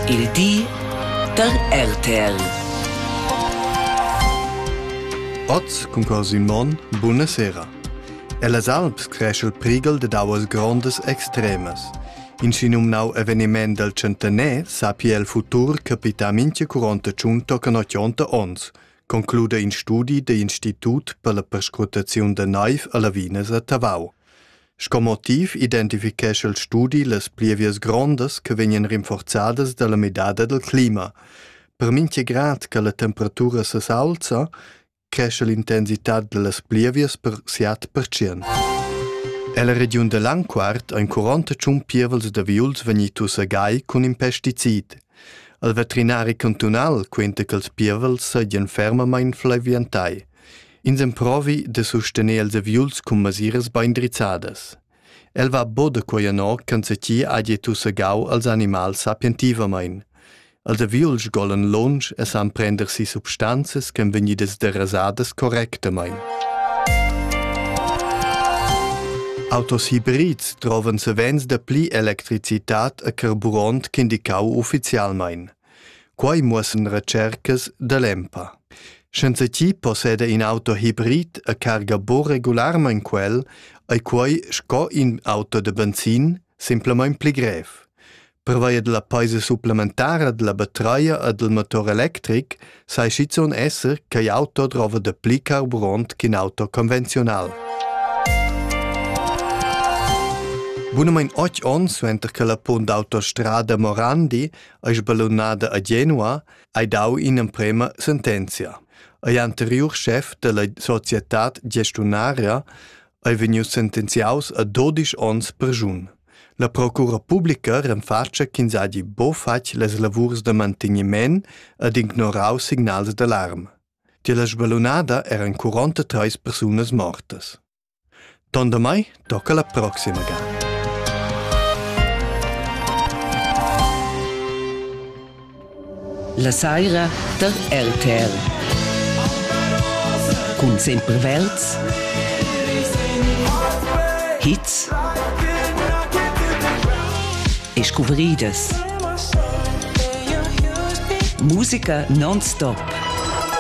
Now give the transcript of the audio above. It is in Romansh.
Il di da RTL. Oz cunqual Simon, buna sera. Ellas Alps creschel prighel dad auas grondas extremas. In schinumnau eveniment del centener sapi el futur capita minche curonta tschun tocan ochonta ons, conclude in studi de Institut per la perscrutaziun de naiv a Lavinas a Tavau. Sco motiv identifichescha il studi las plievias grondas che vegnan rinforzadas dalla midada dal clima. Per mincha grad che la temperatura s'aulza, cresce l'intensità dallas plievias per siat percent. Ella regiun da Langquart ein 40 tschun pievels da viuls vegnitus a gai cun in pesticid. Il veterinari cantunal quenta che ils pievels seigien fermamain flaviantai. Ins emprovi da sustener els aviuls cun masiras bein drizzadas. El va bod a quei anor ch'enzatgi hagi tussegau als animals sapientivamein. Els aviuls sgolan lunsch e san prender si substanzas ch'en vegnidas derasadas correctamein. Autos hybrids trovan savens da pli electricitat a carburant ch'indicau ufficialmein. Quai muossan retschercas da l'EMPA. Senza chi posseda in auto hibrid a carga bo regularmaing quel, ei quai sco in auto da benzin simplamaing pli grev. Pervia della peisa supplementara della batteria e del motor electric sai schizuon esser ch'ei auto drova da pli carburant ch'in auto convenziunal. Bunamain 8 onns suenter che la punt d'autostrada Morandi ei sballunada a Genua, hai dau in'emprema sentenzia. Ei anteriur chef della societad gestiunaria ei vegnius sentenziaus a 12 onns perjun. La procura publica renfatscha ch'ins hagi bo fatg las lavurs da manteniment ed ignorau signals d'alarm. Tier la sballunada eran 43 persunas mortas. Ton damai tocca la proxima ga. La saira da RTR. Cun sempre Welts. Hits e scuvrìdas. Musica non-stop.